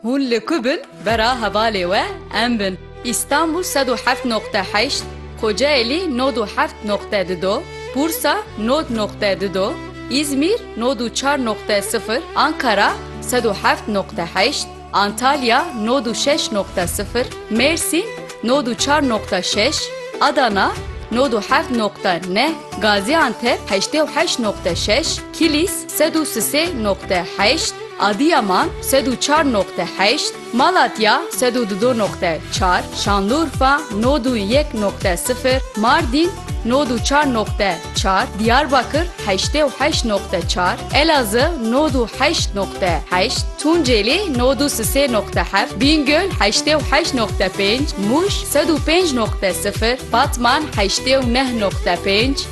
Hûn li ku bin bera hevalê we em bin. Îstanbûl sed û heft noqte heşt, Kocaelî nod û heft noqte di do, Bursa nod noqte di do, Îzmîr nod û çar noqte sifir, Ankara sed û heft noqte heşt, Antalya nod û şeş noqte sifir, Mêrsîn nod û çar noqte şeş, Adana nod û heft noqte neh, Gazîantep heştê û heşt noqte şeş, Kilîs, Sed û sisê noqte heşt, Adîyaman, sed û çar noqte heşt, Malatya, sed û dudo noqte çar, Şanlurfa, nod û yek noqte sifir, Mardîn, nod û çar noqte çar, Dîyarbakir, heştê û heşt noqte çar, Elazı, nod û heşt noqte heşt, Tuncêlî, nod û sisê noqte heft, Bîngöl, heştê û heşt noqte pênc, Mûş, sed û pênc noqte sifir, Batman, heştê û neh noqte pênc,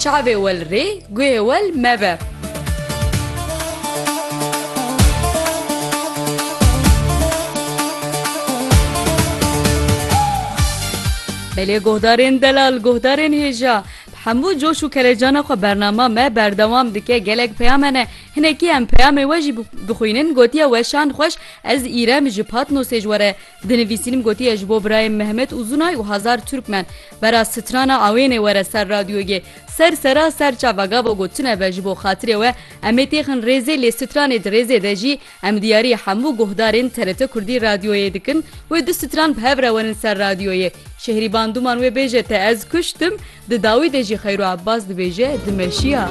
Çavê wel rê, guhê wel mebe. Belê guhdarên delal, guhdarên hêja bi hemû coş û kelecana xwe bernama me berdewam dike. Gelek peyam hene. Hinekî em peyamê we jî bixwînin, gotiye weşan xweş ez îrem ji Patnosê ji we re Di nivîsînim gotiye ji bo birayê Mehmet Uzunay û hezar Turkmen bera strana awênê were ser radyogê. Ser sera ser çava gava got tune be ji bo xatirê we em ê têxin rêzê lê stranê di rêzê de jî em diyarî hemû guhdarên TRT Kurdî radyoyê dikin wê du stran bi hev re werin ser radyoyê. Şehrîban Duman wê bêje te ez kuştim di dawî de jî Xeyru Ebbas dibêje dimeşiya.